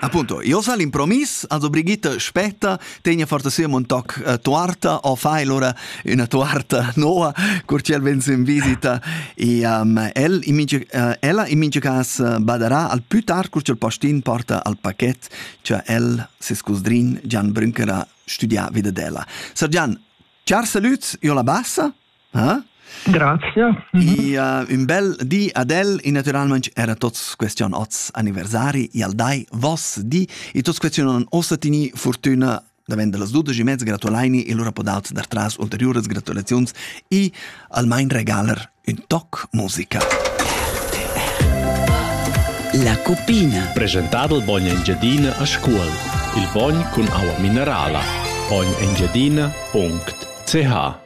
Appunto, io sa l'impromis, also Brigitta spetta, tegna forza sia un toc uh, tuarta o fa allora una tuarta nuova, cur c'el vens in visita e um, el, in minge, uh, ella in minge cas uh, baderà al più tard cur c'el postin porta al pacchet che el, ses cusdrin Gian Brünkerer studia vida della. Sir Gian, char salut, io la bassa? Ah? Grazia. Ja, ün bel di ad el e naturalmente era tots question oz anniversari e al dai vos di e tots question non osatini fortuna davent las 12 e mezza gratulaini e lura podaut dar tras ulteriuras gratulaziuns e almain regaler ün toc musica. La copina. Presentado il bogno Engiadina a scuol. Il bogn cun aua minerala. Ognengiadina.ch